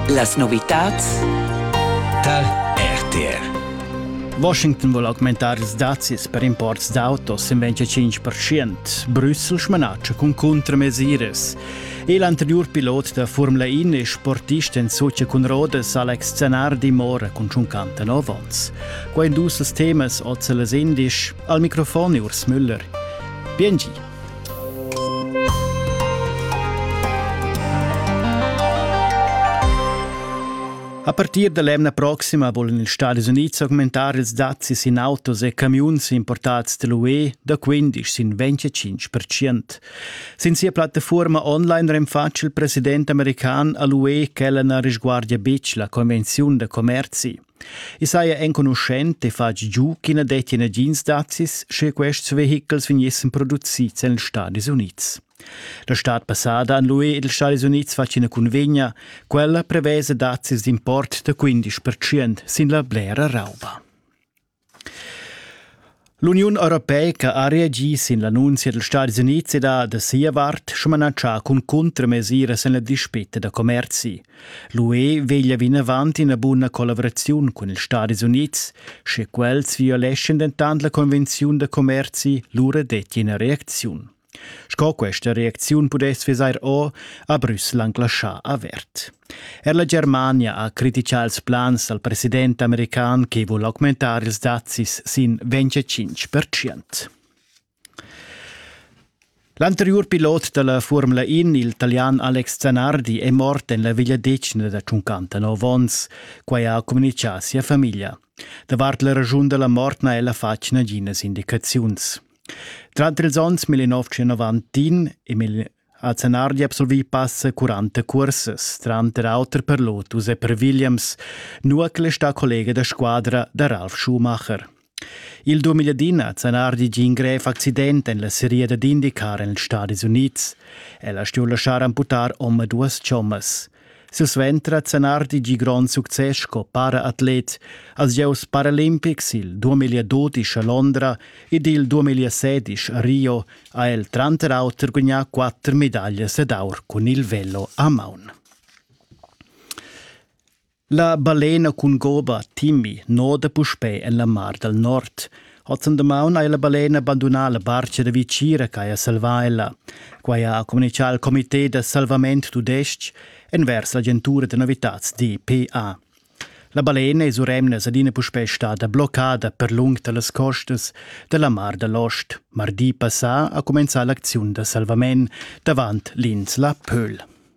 Las novitads tar RTR. Washington vuol augmentaris dazis per imports d'autos im 25%. Brüssel smanatscha cun contramesiras. Il anterior pilot da Formula 1 e sportist en socia cun Rodes Alex Zanardi mora cun 59 ons. Qua in dus temas oz las indisch. Al microfon Urs Müller. Biengi. A partir da l'emna proxima volan ils Stadis Unids augmentar ils dazzis in autos e camiuns importads dall'UE da 15 sin 25%. Sin sia plattafuorma online renfatsch il president american all'UE ch'ella na risguardia betg la convenziun da commerzi. I saja enconuschent e fatg giu ch'i na dettia nagins dazis, sche quests vehichels vegnissen producids en ils Stadis Unids. La stad passada han l'UE ed ils Stadis Unids fatg ina cunvegna. Quella prevesa dazis d'import da 15% sin la blera rauba. L'Uniun europeica ha reagi sin l'annunzia dals Stadis Unids ed ha da sia vart smanatschà cun cuntramesiras en la dispetta da commerzi. L'UE veglia vinavant ina buna collaveraziun cun ils Stadis Unids. Sche quels violeschan dentant la convenziun da commerzi, lura detti ina reacziun. Sco questa reacziun pudess vesair o, ha Brüssel anc laschà avert. Er la Germania ha critichà ils plans dal president american che vul augmentar ils dazis sin 25%. L'anteriur pilot da la Formula In, il talian Alex Zanardi, è mort en la vegliadetgna da 59 onns. Quai ha communitgà sia famiglia. Davart la raschun da la mort n'ha ella fatg naginas indicaziuns. Tranter ils onns 1990 e 1991 ha Zenardi absolvì passa 40 cursas, tranter auter per Lotus e per Williams, nucl sta collega da squadra da Ralf Schumacher. Il 2010 ha Zanardi gi in grev accident en la seria dad indicar en els Stadis Unids. Ella stueva laschar amputar omaduas chommas. Silsuenter ha Zanardi gì grond success sco para-atlet als gieus paralimpics il 2012 a Londra ed il 2016 a Rio ha el tranter auter gugnà quatter medaglias ed aur cun il velo a maun. La balena cun goba Timmy noda puspè en la Mar dal Nord. Hozzan damaun ha ella balena bandunà la barcha da vicira ch'haja salvà ella. Quai ha communitgà il comité da salvament tudestg envers l'agentura da novitads DPA. La balena es uremnas adina puspè stada bloccada per lung da las costas da la Mar da l'Ost. Mardi passà ha cumenzà l'acziun da salvament davant l'insla Pöhl.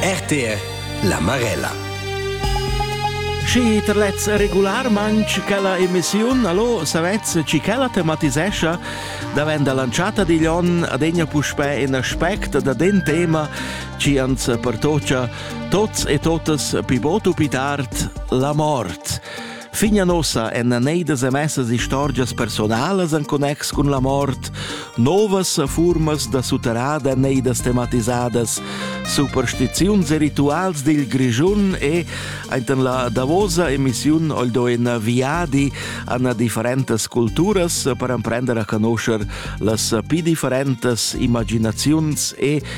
RTL La Marella Schi terlez regularmanc quella emissiun, allo savez ci quella tematisescha, davent lanciata digl on adegna puspè in aspect da den tema ci ans pertocia tots e totas pi botu pi tard la mort. Fin a nossa èn neidas emessas istorgias personalas en connex cun la mort, novas furmas da sutterrada neidas tematisadas, superstiziuns e rituals dil Grischun e enten la davosa emissiun oldo in viadi an differentas culturas per emprender a conoscer las pi differentas imaginaziuns e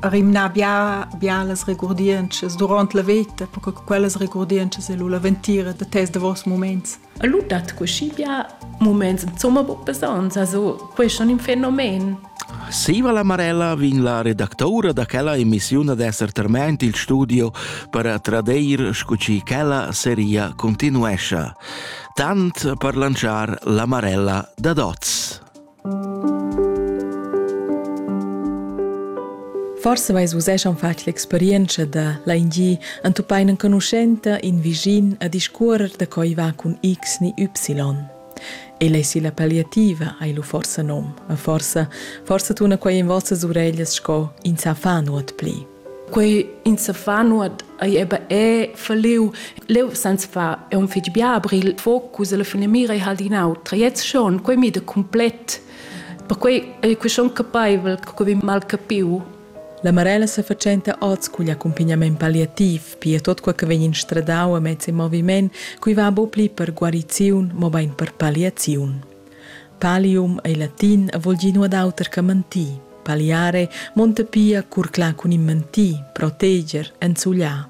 rimnar bia bialas regurdientschas durant la veta, perché quellas regurdientschas è la ventira da tes davos moments. A lu dat così bia moments insomma buc besonns, also questo è un fenomen. Siva la Marella vin la redactaura da quella emissiun ad esser terment il studio per tradeir scu ci quella seria continuescia. Tant per lanciar la Marella da Doz. Forse vais vus eschan fatg l'experienza da l'ANG entupain enconuschenta in visin a discuorer da coi va cun X ni Y. El ei si la palliativa, hai lu forsa nom, ma forsa, forsa tuna quei in vossas ureglias sco in sa fa nuot pli. Quei in sa fa nuot ei eba è verliu. Leu sans fa è un fetg bia, aber il focus e la finamira ei halt in autra. Jetzt schon, quei mi da complet. Perquei ei quei schon capeivel, che quei mal capiu. La Marella sa fatschenta oz cugl accumpagnament palliativ, pia tot quei che vegn instradau amez il moviment, cui va bu pli per guariziun, mo bein per palliaziun. Palium ei latin e vul dir nuot auter che mentir. Paliare monta pia curclar cun in mentir, proteger, enzugliar.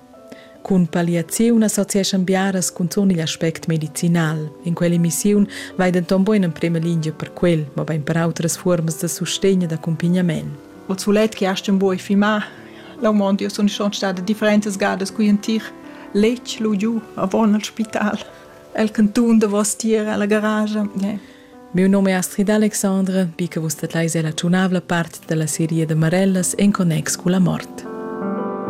Cun paliaziun associeschan biaras cunzun igl aspect medicinal. In quell'emissiun vai denton buin en prema lingia per quel, mobein per outras fuormas da sustegn e d'accumpagnament. O sulet che hast un buoi fimar, l'aumond io sun schon stada differentas gadas qui in tir letg lu giu avon al spital. El cantun davostier alla garage. Yeah. Miu num è Astrid Alexandre, bi che vus statleis ella tschunavla part dalla seria de Marellas en connex cu la mort.